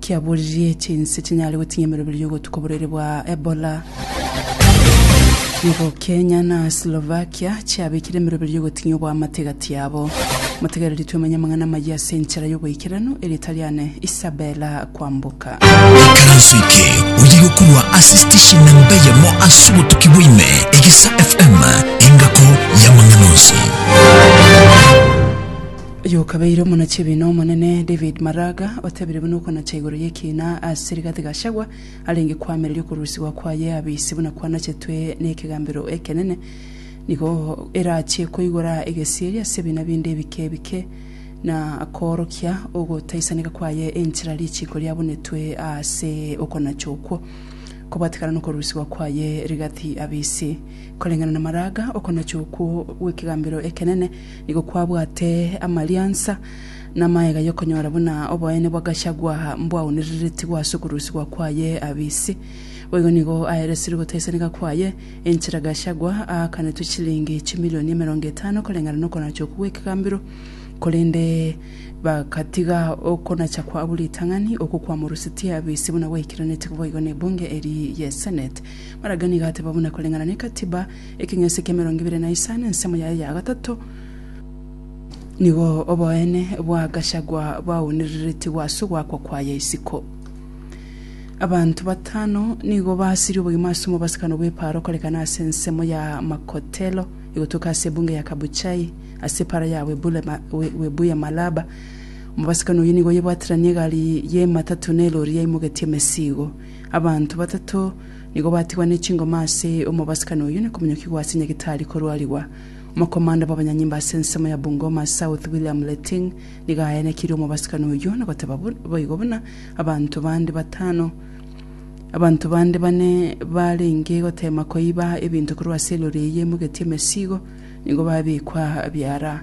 kiaboririe chinse chinyare gotinyia emeroberi y'ogotuko borwaire bwa Ebola. Nigo Kenya na Slovakia chiabekire emeroberi y'ogotinyia obwamate gati yabo. Motegereri twemenye amang'ana amayia ase enchera y'oboikeranu ere etari ane Isabella kwamboka. Ekaranso eke oye gokorwa ase station namba eyemo ase obotuki bwa ime, Egesa FM, engako y'amang'ana onsi. Oyokabeire omonachi-ebiina omonene David Maraga otabire buna okonacha igoro y'ekiina ase Rigathi Gachagua arenge koamereria okorusigwa kwaye abisi buna kwanachetwe n'ekegambero ekenene nigo erachie koigora egesieri ase ebiina binde ebike ebike na koorokia ogotaisaneka kwaye enchera richiiko riabunetwe aase okonacha okwo kobwatekana n'okorusigwa kwaye Rigathi abisi. Koreng'ana na Maraga, okonacha okwo gw'ekegambero ekenene Nigo kwabwate amariansa namaega yokonyora buna oboene bwa Gachagua mbwaonereretigwe ase okorusigwa kwaye abise. Boigo nigo aeresirwe gotaisanika kwaye, enchera Gachagua aakanetwe chilingi chimilioni emerongo etano koreng'ana nokonachoku gwekegambero, korende bagatiga okonachakwa abwo ritang'ani. Okwo kwamorusetie abise buna gwaikeranetigwe boigo nebunge eri ye Senate. Maraga nigo ateba buna koreng'ana nekatiba, Ekeng'ese ki'emerongo ebere na isano, ensemo yaye ya gatato, nigo oboene bwa Gachagua bwaunereretigwe ase ogoakwa kwaye isiko. Abanto batano nigo basirie obogima ase omobasakano bw'epaaro okorekana ase ensemo ya Makotelo egotuka ase ebunge ya Kabuchai ase epaaro ya Webuye Malaba. Omobasakano oyio nigo oyebwateranie egari y'ematatu na elori yaimogetie emesigo. Abanto batato Nigo batigwa ne chingoma ase omobasibkani oyio na komonyokigwa ase nyagetari korwarigwa. Omokomanda bw'abanyanyimba ase ensemo ya Bungoma South William Leting nigo aenekirie omobasibkani oyio na goteba boigo buna abanto bande batano Abanto bande bane barenge gotema koiba ebinto korwa ase elori eyio emogetie emesigo nigo babekwa biara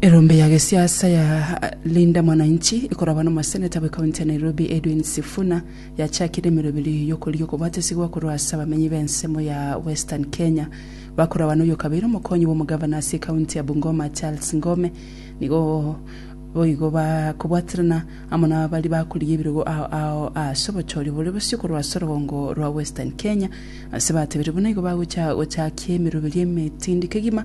Erombe ya gesiasa ya Linda Mwananchi ekorabwa n'omoseneta bwe county ya Nairobi Edwin Sifuna yachakire emeroberio eye y'okorigia okobwatesigwa korwa ase abamenyi b'ensemo ya Western Kenya. Bakorabwa n'oyokabeire omokonyi bw'omogavana ase county ya Bungoma Charles Ngome nigo boigo bakobwaterana amo nabari bakorigia ebirogo ao ao ase obochoria obore bosio korwa ase orogongo rwa Western Kenya ase batebire buna igo bagocha gochakia emeroberio emetindi kegima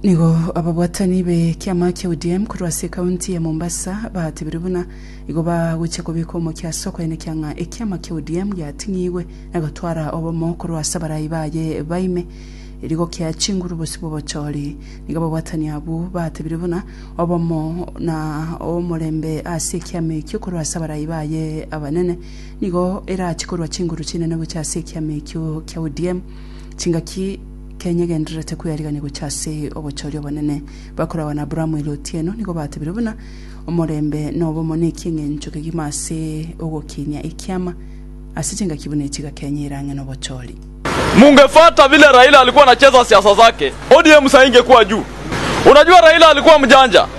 Nigo ababwatani b'ekiama kia ODM korwa ase ekaunti ya Mombasa batebire buna igo bagochia kobeka omokia ase okoenekia ng'a ekiama kia ODM giating'igwe na gotwara obomo korwa ase abarai baye ba ime, erio gokia chinguru bosio bw'obochori. Nigo ababwatani abwo batebire buna obomo na omorembe ase ekiama ekio korwa ase abarai baye abanene nigo erachie korwa chinguru chinene gochia ase ekiama ekio kia ODM. Chingaki. Kenya egendererete kweyarigania gochia ase obochori obonene. Bakoragwa na Abrahamu ere otieno nigo batebire buna, Omorembe na obomo neki eng'encho kegima ase ogokinia ekiama. Ase chingaki buna echiga Kenya ere ang'e nobochori. Mungefwata vile Raila alikuwa anacheza siasa zake, ODM saa hii ingekuwa juu. Unajua Raila alikuwa mjanja.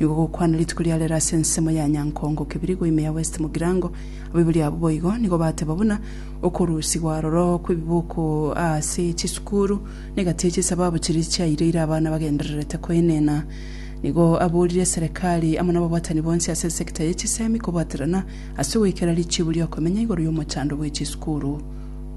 Nigo gokwana rituko ria rero ase ensemo ya Nyankongo Kibirigo ime ya West Mugirango. Abaibori abwo boigo nigo bateba buna okorusigwa aroro kw'ebiboko ase chisukuru negati ye chisababu chiria chiaireire abana bagendererete koenena. Nigo aborire Serekari amo nababwatani bonsi ase esecta ye chisemi kobwaterana ase ogoikera richiibu riokomenya igoro y'omochando bwe chisukuru.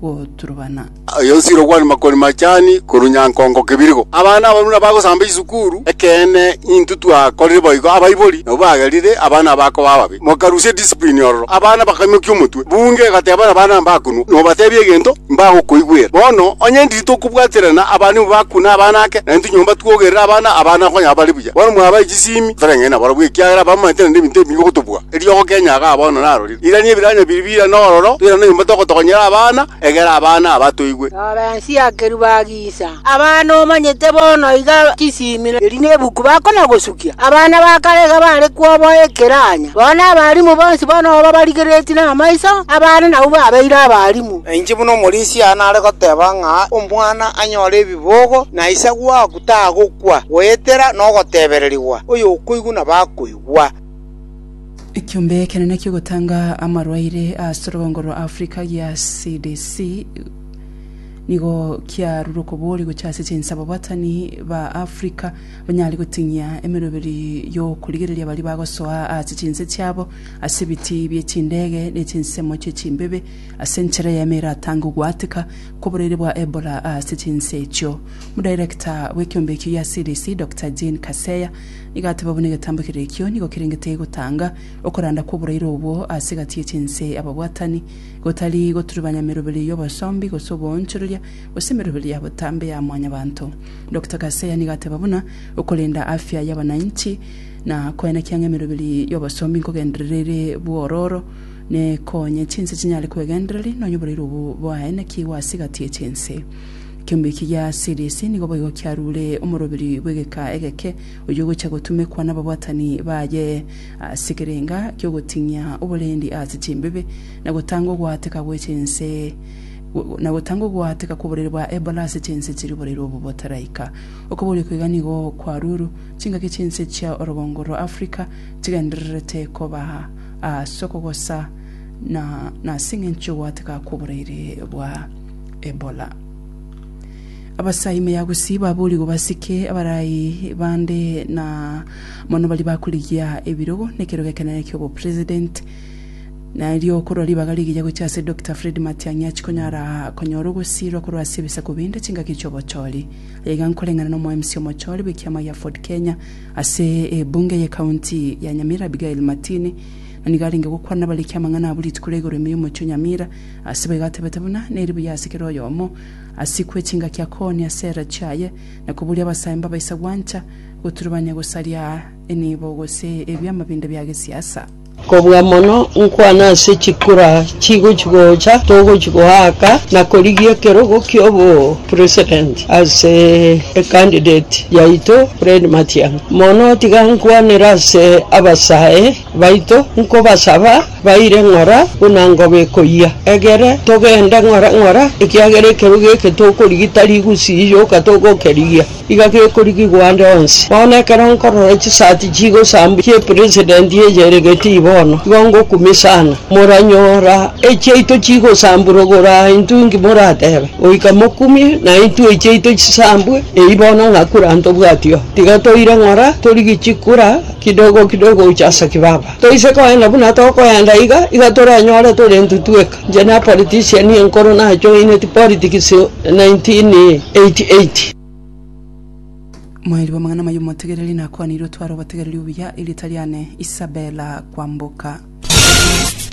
goturubana. Aye nsire okwane makoni machani korwa nyankongo kebirigo. Abana abaruna bagosamba chisukuru, ekeene intwe twakorire boigo abaibori nabwo bagerire abana abakoba ababe. Mokarusia edisiprini ororo. Abana bakaimokia omotwe. Bunge egateba abana mbakunwa, nobatebia egento, mbagokoigwera. Bono onye ndiri tokobwaterana abana nigo bakune abana ake, naintwe nyomba twogerere abana, abana konyara bare buya. Bono mwabae chisimi, toreng'aini nabarabwo ekiagera bamanyete naende ebinto ebinge gotobua. Eriogo kenyaga bono narorire. Irania ebiranya biria bire n'ororo, bire noyomo togotokonyera abana, egera abana aba toigwe. Lorensia akeruba agisa abana omanyete bono iga chisimi eri nebuku bakona gosukia. Abana ba kare iga bare kwoboa ekiranya. Bono abalimu bonsi bono babarigeretie namaiso, abana nabwo babeire abalimu. Nainche buna omorisia aya nare goteba ng'a omwana anyore ebibogo na ise gwaku tagokwa, goetera nogotebererigwa, oyokoigwa nabakoigwa. Ekiombe ekenene ki'ogotanga amarwaire ase orogongo rwa Africa gia CDC nigo kiarure okoboria gochia ase chinsa ababatani ba Africa banyare goting'ia emeroberi y'okorigereria baria bagosoa ase chinse chiabo ase ebiti bie chindege ne chinsemo chie chimbebe ase enchera eyemo eratange ogwateka kw'oboraire bwa Ebola ase chinsa echio. Omodirector bw'ekiombe ekio gia CDC, Doctor Jean Kaseya Igateba buna egetambo kere ekio nigo kerengete gotanga okoranda kw'oboraire obwo ase egati ye chinse ababwatani, gotari goturubanya emeroberio y'obosombi gose oboonchoreria, gose emeroberio ya botambe ya mwanyabanto. Doctor Kaseya nigo ateba buna okorenda afya y'abananchi na koenekia ng'a emeroberio y'obosombi nkogenderera ere bwororo nekonye chinse chinyare kwegendereri nonya oboraire obwo bwaenekigwe ase egati ye chinse. Ekiombe eki gia Sirisi nigo boigo kiarure omoroberi bw'egeka egeke, oyio ogocha gotumekwa nababwatani baye ase ekerenga ki'ogoting'ia oborendi ase chimbibe, na gotanga ogoateka gwe chinse, na gotanga ogoateka kw'oborere bwa Ebola ase chinse chiri oborere obo botaraika. Okoboria oko iga nigo kwaruru chingaki chinse chia orogongo rwa Africa chigendererete koba ase okogosa, na nas'eng'encho y'ogoateka kw'oboreire bwa. Ebola. Abasa ime ya gusii baboorigwe basike abarai bande na mono baria bakorigia ebirogo nekerogo ekenene ki'obopresident. Na erio korwa ribaga rigiya gochia ase Doctor Fred Matiang'i achikonyara konyora ogosiirwa korwa ase ebisaku binde chingaki chi'obochori. Aye iga nkoreng'ana na omoemsi omochori bw'ekiama gia Ford Kenya ase ebunge y'ecounty ya Nyamira Abigail Matini. Na nigo arenge gokwana bare ekiamang'ana abwo rituko ria igoro ime y'omochie o Nyamira Asebo iga atebete buna neri buya ase kera oyomo, asikwe chingaki akooni ase era chiaye, na koburia abasaimba abaisa gwancha, goturubania gosaria enibo gose ebiama binde bia gesiasa. Kobua mono nkwane ase chikura chigochi gocha togochi goaka na korigia ekerogo kiobo president ase e candidate yaito Fred Matiang'i. Mono tiga nkwanere ase abasae baito nkobasaba Baire ng'ora buna ngobe ekoyia. Egere togende ng'ora ng'ora, ekiagera ekerogo eke tokorigita rigusii yoka togokerigia, iga gekorigigwa ande onsi. Bono ekero nkorora chisati chigosambwa chi'epresident eye ere Gittii bono, igo ngokumia sana. Moranyora echiaito chigosambwa rogoro aa intwe inki moratebe? Goika mokumie na intwe echiaito chisambwe eyio bono ng'a kura ntobwati oo. Tiga toire ng'ora torigie chikura kidogo kidogo gocha ase kibaba. Toise koe na buna tokoenda iga iga torenyore tore ntutweka inche na politician enkoro na join ti politics 1988. Mweri bwa amang'ana amaya omotegereri nakwanire otware obotegereri obuya erieta riane Isabella Kwamboka.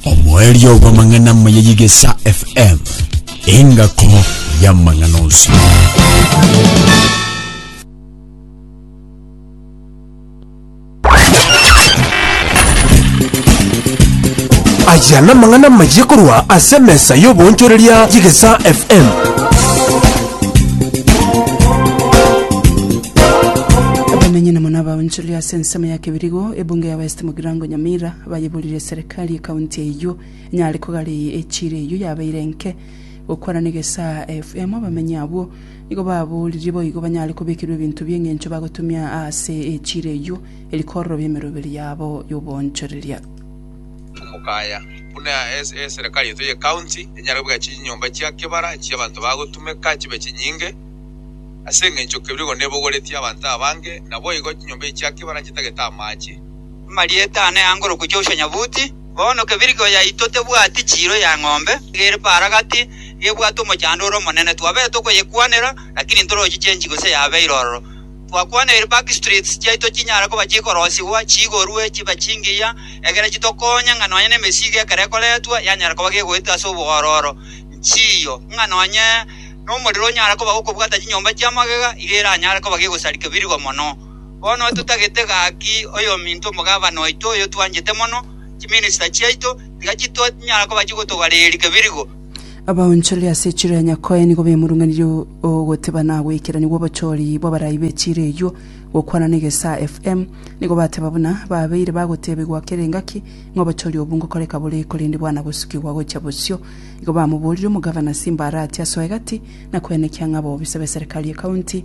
Omweri obwa amang'ana amaya yigesa FM engako ya amang'ana onsi. Aya namang'ana amayia korwa ase emesa y'oboonchoreria y'egesaa FM. Abamenyi na muna abaonchori ase ensemo ya Kibirigo, ebunge ya West Mugirango Nyamira bayeburire serikali ekaunti eyio enyare kogaria echiira eyio yabeire enke. Gokwana na egesaa FM abamenyi abwo Nigo baboorire boigo banyare kobekerwa ebinto bi'engencho bagotumia aase echiira eyio, eri kororobia emeroberi yabo y'oboonchoreria. Omokaya, buna eserekari yaito ye county enyare kobeka chinyomba chia kebara chia abanto bagotumeka chibe chinyinge, ase engencho kebirigo nebogoretie abanto abange, naboigo chinyomba echi chia kebara nchitagete amache. Amarieta ane angorokwe Joshua Nyabuti. Bono kebirigio yaito tebwati chiiro ya ng'ombe ere paragati ebwate omochando ore omonene. Twabete tokoyekwanera, lakini ntorochi change gose yabeire ororo. Twakwaneire back streets chiaito chinyare koba chikorosigwa, chiigorwe, chibe chingiya, egere chitokonye ng'a nonye nemesigo ekero ekoretwa yanyara koba gegoeta ase obogororo. Nchiyo ng'a nonye nomorero onyare koba gokobwata chinyomba chi'amagega, iga eranyare koba gegosarika ebirigio mono. Bono totagete gaki oyominto omogabana oito oyo twanchete mono, chiminista chiaito, tiga chitonyara koba chigotogareria kebirigo. Abaonchori ase echiro ya Nyakoe nigo bemurung'anirie ogoteba na goikerania gw'obochori bw'abarai b'echiro eyio. Gokwana n'egesaa FM, nigo bateba buna babeire bagotebigwa kera engaki ng'a obochori obwo ngokoreka bore korende bwana gosukigwa gochia bosio. Igo bamoborire omogabana ase imbarati asoe gati na kwenekia ng'a abobisa b'eserekari y'ekaunti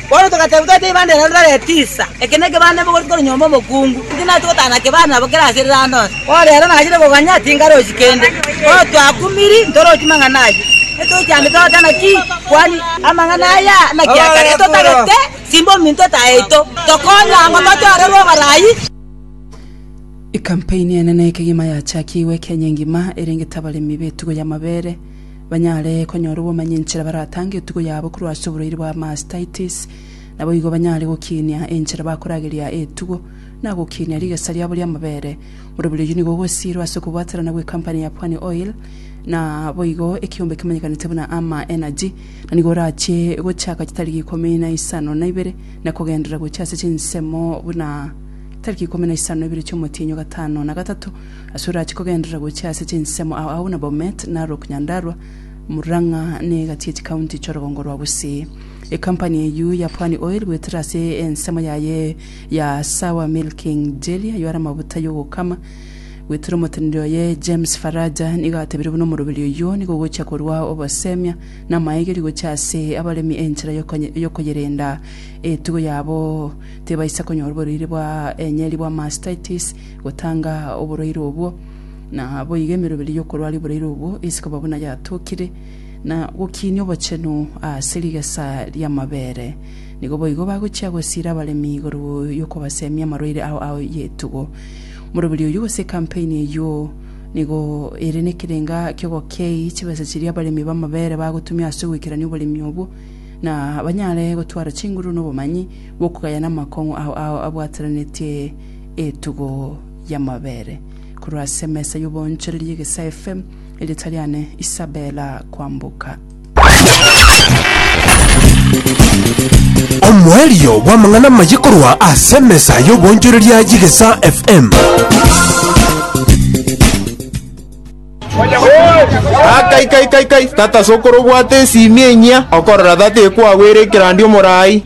Bono togateeba twete ibanda ere rore tisa, eke nekebanda mogoreti korwa nyomba omokungu, inche nache gotana na kebanda nabo kere ase ereranda onsi. Bono rero nachire koganya tinkarochi kende, bono twakumiri ntorochi mang'ana ayio, etochi ande togoteba naki kwani amang'ana aya naki akare, etotagete simba ominto ete aito, tokonye ango tochorerwe oborai. Ekampaini ene nekegima yachakiigwe Kenya engima erengete abaremi betugo yamabere. banyare konyora obomanyi enchera baratange etugo yabo korwa ase oborwaire bwa mastitis. Naboigo banyare gokinia enchera bakorageria etugo na gokinia rigesa riabo ri'amabere. Borobori oyio nigo ogosiirwa ase okobwaterana gw'ekampani ya Pwani Oil na boigo ekiombe kimanyekanete buna Ama Energy na nigo orachie gochaka chitariki ikomi na isano na ibere na kogenderera gochia ase chinsemo buna tariki ikomi na isano na ibere chi'omotienyi o gatano na gatato Ase orache kogenderera gochia ase chinsemo ao agwo na Bomet, Narok, Nyandarua, Murang'a na egati ye chikaunti chi'orogongo rwa Gusii. Ecompany eyio ya Pwani Oil goetera ase ensemo yaye ya Sawa Milking Jelly aywo are amabuta y'ogokama. Goetera omoteneneri oye James Faraja nigo atebirie buna omoroberi oyio nigo ogochia korua obosemia na amaegeri gochia ase abaremi enchera y'okoyerenda etugo yabo tebaisa konyora oborwaire bwa enyeri bwa mastitis gotanga oboraire obwo, na boigo emeroberi y'okorwa are oboraire obwo ase koba buna yatokire, na gokiinia obochenu ase rigesa ri'amabere. Nigo boigo bagochia gosiira abaremi igoro y'okobaseemia amarwaire ao a etugo. Moroberi oyio gose ekampeni eyio nigo ere nekerenga ki'ogokei chibesa chiria abaremi b'amabere bagotumia ase ogoikerania oboremi obwo, na banyare gotwara chinguru nobomanyi bw'okogayana amakong'u ao abwatananetie etugo y'amabere korwa ase emesa y'oboonchoreria y'egesaefe, erieta riane Isabella Kwamboka. Omoerio bw'amang'ana amaye korwa ase emesa y'oboonchoreria y'egesaa FM. Tata ase okorobwata esiimi enyia, okorora tata ekwagwera ekerandia omorai.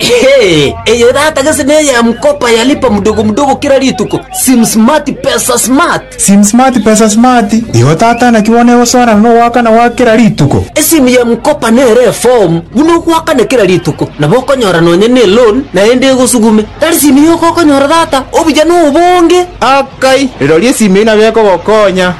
Eye tata gese neya mkopa ya lipa mdogo mdogo kera rituko, sim smart pesa smart. Sim smart pesa smart, igo tata naki bono egosoerana nogoakana gwa kera rituko. Esimu ya mkopa nere efomu buna ogoakana kera rituko, nabo okonyora nonya ne loan naende egosugume. Tari simu yoka okonyora tata, obuya nobonge. Akai, rirorio esimu eyio nabo ekogokonya.